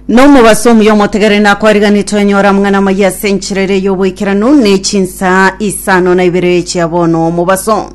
nomobaso omuya omotegere nakwariganete onyora mang'ana amaya ase enchera ere y'oboikeranu ne chinsaa isano na ibere chia bono omobaso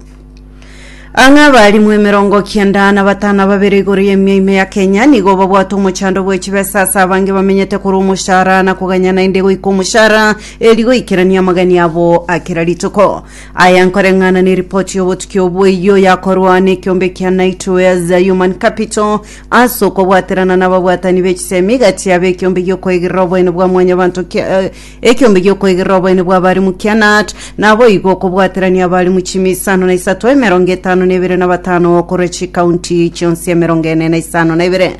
ang'e abarimwe emerongo kianda na batano babere igoro y'emia ime ya kenya nigo babwate omochando bw'echibesa ase abange bamenyete korwa omoshara na koganya naende goika omoshara eri goikerania amagani abo akera rituko Aya nkoreng'ana neripoti y'obotuki obwo eyio yakorwa nekiombe kia Nightwares Human Capital ase okobwaterana nababwatani b'echisemi gati yabo ekiombe giokoigerera oboene bwa mwanyabanto kia eh, ekiombe giokoigerera oboene bwa abarimu kia NAT naboigo okobwaterania abarimu chimi isano na isato emerongo etano na ebere na batano korwa chikaunti chionsi emerongo ene na isano na ebere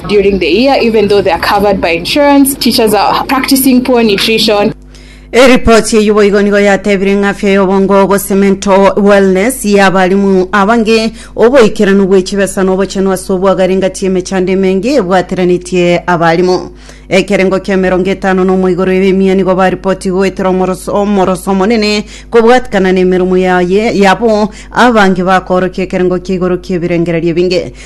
During the year, even though they are covered by insurance, teachers are practicing poor nutrition. Eripoti eyio boigo nigo yatebire ng'a afya y'obongo gose mental wellness y'abarimu abange, oboikeranu bwe chibesa na obochenu ase obwagari ngati emechando emenge ebwateranetie abarimu. Ekerengo ki'emerongo etano na omoigoro y'emia nigo baripoti goetera omoroso omoroso omonene kobwatikana nemeromo yaye yabo abange bakorokia ekerengo kia igoro ki'ebirengererio ebinge.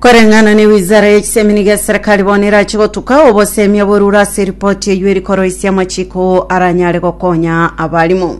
Koreng'ana ne wizara ye chisemini gie serikali bono erache gotuka obosemia borure ase eripoti eyio eri koroisia amachiko aranyare gokonya abarimo.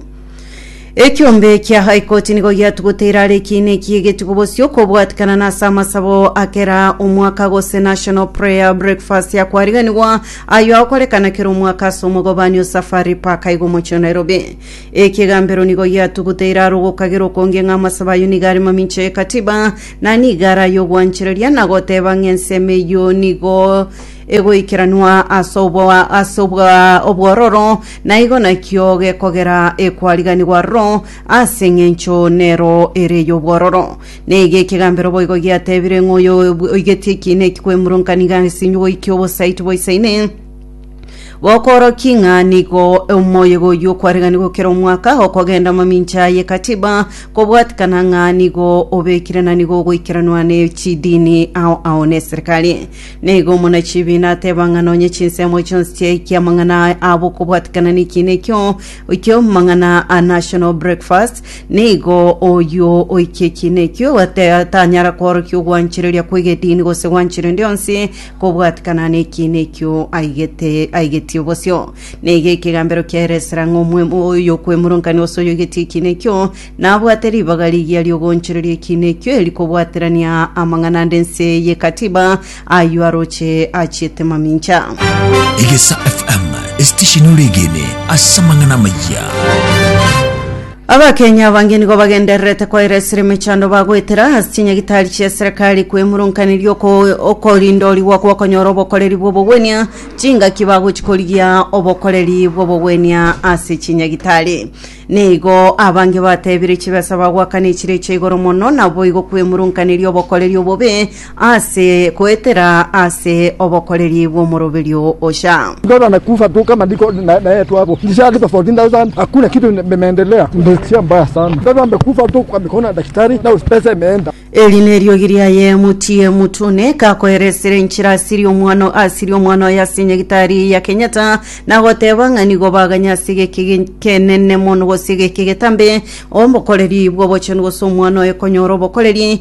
Ekiombe kia High Court nigo giatugote erara ekiina ekiya egetugo bosio kobwatikana na ase amasabo akera omwaka gose National Prayer Breakfast ya kwariganigwa ayo agokorekana kera omwaka ase omogobani o Safari Park aigo omochie o Nairobi. Ekigambero nigo giatugote erara ogokagera okonge ng'a amasabo ayo nigo are mamincha ye katiba Na nigo araye ogwanchereria na goteba ng'a ensemo eyio nigo egoikeranwa ase obwa ase obwa obwororo, na igo nakio gekogera ekwariganigwa aroro, ase engencho nero ere ey'obwororo. Na iga ekegambero boigo giatebire ng'a oyo oigetie ekiina eki kwemurunka nigo asinyiwe goikia obosaiti boisaine, Gokoorokia ng'a nigo omoyega oyio okwareganire gokera omwaka okogenda amamincha ye katiba kobwatikana ng'a nigo obekire na nigo ogoikeranwa ne chidini ao ao ne serikali. Nigo omona chibiina ateba ng'a nonye chinsemo chionsi chiaikia amang'ana abo okobwatikana ne ekiina ekio ekio mang'ana a national breakfast nigo oyio oikia ekiina ekio ate- tanyara koorokia ogwanchereria kw'egedini gose gwanchera endi yonsi Kobwatikana nekiina ekio aigete aigetie obosio, neiga ekegambero kiaye esera ng'a omwemo oyokwemurankania ose oyoigetie ekiina ekio nabwate ribaga rigiya riogoonchoreria ekiina ekio eri kobwaterania amang'ana ande ense ye katiba ayio aroche achiete mamincha. Egesa FM, esitesheni ore egene ase amang'ana amayia. Abakenya abange nigo bagendererete koera esere emechando bagoetera ase chinyagitari chia eserekari kwemurunkaneria oko- okorindorigwa gw'okonyora obokoreri bw'obogwenia, chingaki bagochi korigia obokoreri bw'obogwenia ase chinyagitari. Nigo abange batebire chibesa bagoakana echire echaigoro mono naboigo kwemurunkaneria obokoreri obobe, Ase goetera ase obokoreri bw'omoroberio ocha. Bora na kufa tuka madiko na na etu abo kisha alipa 14000 hakuna kitu imeendelea mbesia mbaya sana bora mbe kufa tu kwa mikono ya daktari na pesa imeenda Eri neriogi riaye motiye motune kakoeresera enchera asiria omwana o- asiria omwana oye ase nyagitari ya Kenyatta na goteba ng'a nigo baganya ase egeki ge- kenene mono gose egeki getambe obokoreri bw'obochenu gose omwana oye konyora obokoreri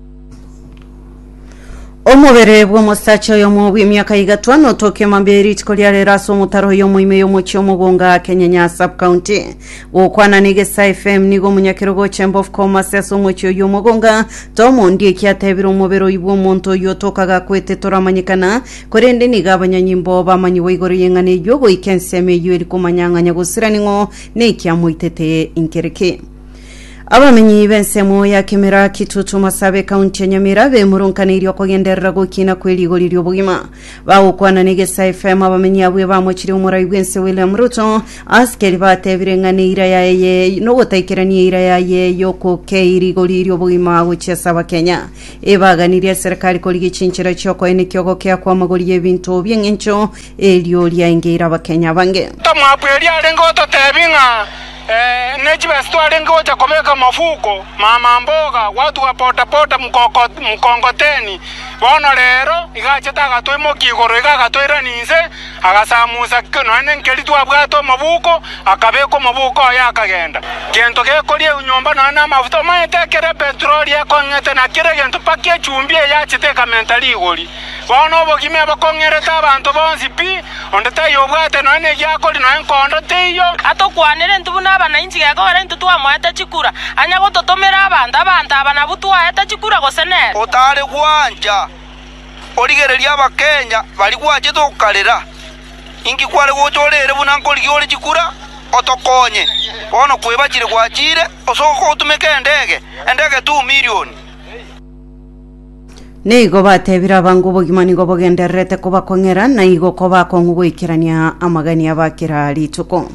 omobere bw'omosacha oyomo bw'emiaka igatwa notokia mambia eritiko ria rero ase omotaro oyo omoime y'omochie omogonga kenyenya sub county gokwana negesa fm nigo omunyakero gocha embof commerce ase omochie oyo omogonga tomondi eki atebire omobere oyi bw'omonto oyo tokaga kwete toramanyekana korende niga abanyanyimbo bamanyigwa igoro y'eng'ana eywo goika ensemo eywo eri komanya ng'a nyagosira ning'o nekiamoitete inkereke Abamenyi b'ensemo ya Kemera, Kitutu, Masabe, kaunti ya Nyamira bemurunkaneirie okogenderera gokina kwe rigori ri'obogima. Bagokwana n'Egesa FM abamenyi abwo ebamochirie omorai bw'ense William Ruto ase keri batebire ng'a neira yaye nogotaikerania eira yaye y'okokei rigori ri'obogima gochia ase Abakenya. Ebaganirie serikali korigia chinchera chi'okoenekia ogokea kw'amagori y'ebinto bi'eng'encho Erio riaengeire abakenya bange. Tomoabu erio arenge gototeebia ng'a, Ne chibesa twarenge gocha kobeka mafuko, mama mboga, watu wa potapota, mkongoteni, bono reero iga achete agatoimokia igoro iga agatoirania inse, agasamusa nonya nenkeri twabwate omoboko, akabeka omoboko oye akagenda. Gento gekoria eunyomba nonya namafuta, omanyete ekero epetroli ekong'ete na kera egento mpaka echumbi eye achete ekamenta rigori. Bono obogima ebokong'erete abanto bonsi pi, onde taiyo obwate nonya negiakori nonya enkondo teiyo. Atokwanere intwe buna abanainchi gekogera intwe twamoete chikura, anya gototomera abanto, abanto aba nabwo twaete chikura gose nere. Otare gwancha, origererie abakenya bari gwachete okarera. Inki kware gocha ore ere buna nkorigia ore chikura? Otokonye. Bono kwebachire gwachiire, ose ogotumeka endege, endege tu milioni. Nigo batebire abange obogima nigo bogendererete kobakong'era, na igo kobakong'u goikerania amagani aba kera rituko.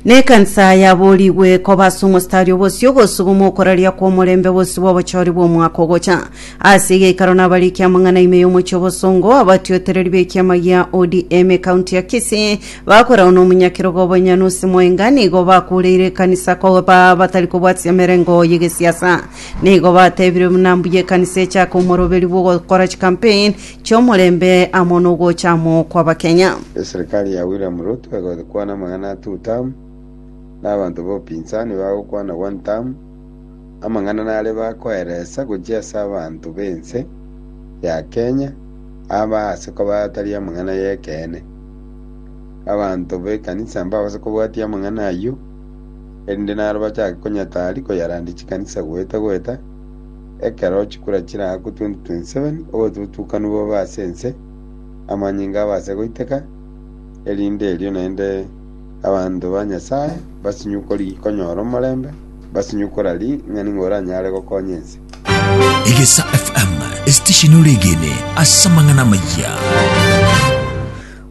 Na ekansa yaborigwe koba ase omositari obosio gosuba omokoraria kw'omorembe bosio bw'obochori bw'omwaka ogocha. Ase egeikaro nabarikia amang'ana ime y'omochie obosongo, abatiotereri b'ekiama gia ODM ekaunti ya Kisii bakoragwa n'omonyakerogo Bonyanusi Mwenga nigo bakureire ekanisa koba batari kobwatia emerengo y'egesiasa. Nigo batebire buna mbuya ekanisa echake omoroberi bw'ogokora chikampeni chi'omorembe amo n'ogocha amo kw'Abakenya. Eserikari ya William Ruto egokwana amang'ana a two term, na abanto ba opinsani bagokwana one term, amang'ana nare bakoeresa gochia ase abanto b'ense ya Kenya aba ase koba atari amang'ana y'ekeene. Abanto b'ekanisa mbabase kobwatia amang'ana ayio. erinde naro bachake konyatari koyarandia chikanisa goeta goeta, ekero chikura chiraakwe 2027, obotutukanu bobe ase ense, amanyinga abase goiteka, erinde erio naende abanto ba Nyasae basinyukori konyora omorembe, basinyukora ring'ana nigo oranyare gokonya ense. Egesa FM, esitesheni ore egene ase amang'ana amayia.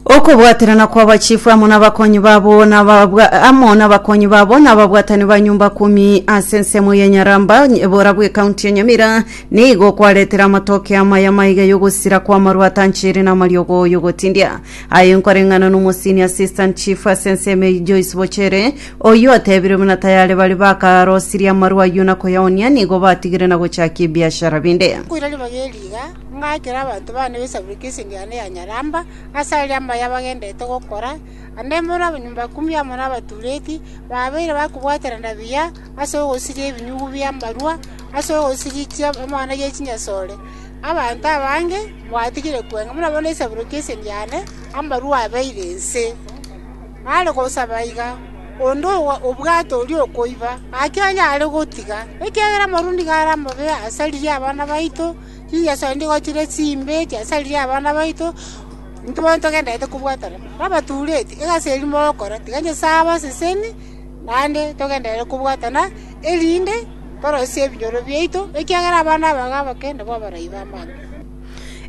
Okobwaterana kw'abachifu amo n'abakonyi babo n'ababwa- amo n'abakonyi babo n'ababwatani ba nyomba kumi ase ensemo ya Nyaramba, ebora bw'ekaunti ya Nyamira, nigo kwaretire amatoke amaya maiga y'ogosira kw'amaru atanchiire n'amariogo y'ogotindia. Aye nkoreng'ana n'omosini Assistant Chief ase ensemo eye Joyce Bochere, oyio otebire buna tayare baria bakarosirie amaru ayio na koyaonia nigo batigire na gochakia ebiashara binde. Koiraneria mageri iga Ngaikera abanto bane b'esaburi k'esegi yane ya nyaramba, ase aria amaya bagenderete gokora, naende mbore abanyomba ikumu amo nabatureti, babeire bakobwaterana buya ase ogosiria ebinyugu bi'amarua, ase ogosirichia amang'ana ye chinyasore. Abanto abange mbatigire kweng'a, buna bono esaburi k'esegi yane amarua abeire inse. Nare gosaba iga, onde obwate oria okoiba, gaki onye are gotiga, ekiagera amarua nigo are amabe ase riria abana baito. Chingeso echi nigo chire chimbe chiasaririe abana baito, intwe bono togendererete kobwatana nabatureti, egasi eria morokora tiga Nyasae abaseseni, naende togenderere kobwatana erinde torosie ebinyoro biaito, ekiagera abana aba iga abake nabwo abarai b'amang'ana.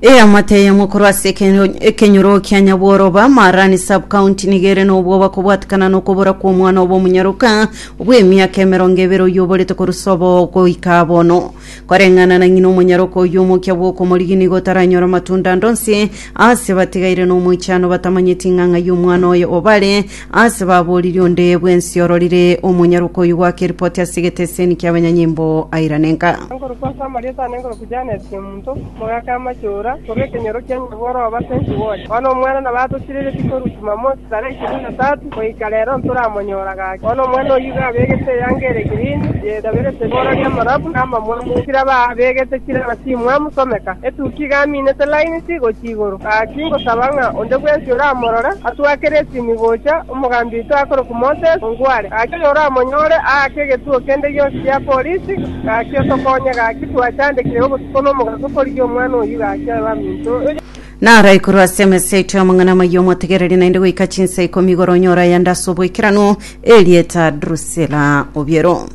Eamate eyemo korwa ase ekenyo- ekenyoro kia Nyabworoba, Marani Sub-County nigo ere nobwoba kobwatekana nokobora kw'omwana obo omonyaroka bw'emiaka emerongo ebere oyio oborete korwa sobo goika bono. Koreng'ana na ng'ina omonyaroke oyio omokia bw'okomorigi nigo otaranyora amatunda ande onsi ase batigaire nomoichano batamanyeti ng'a ng'ai omwana oye obare, ase babooriri onde bwensi ororire omonyaroke oyio goaka eripoti ase egeteseni ki'abanyanyimbo airane nka. Nkorokwa Samaria tane nkorokwa Janesi omonto. Mogaaka amachura, korwa ekenyoro kia nyabwo oroo base inse bwonsi. Bono omwana nabo atotireretie korwa Jumamosi tarehe ishirini na tatu goika rero ntoramonyora gaki. Bono omwana oyio iga abegete eyanga ere girini, yedaberete ribooro ri'amarabu na amamwamu, chire aba abegete chire aba chimwamu someka. Etukia iga aminete laini ti gochia igoro. Gaki ngosaba ng'a onde bwensi oramorore atwakere esimi gocha omogambi oito akorokwa Moses ongware. Gaki oyoramonyore aake egetuo kende gionsi gia polisi. Gaki otokonye, gaki twachandekire obotuko na omogaso korigia omwana oyio, gaki aye baminto. Naro igoro ase emesa yaito y'amang'ana amayia omotegereri naende goika chinsa ikomi igoro onyore ayande ase oboikeranu, erieta Drusila obiero.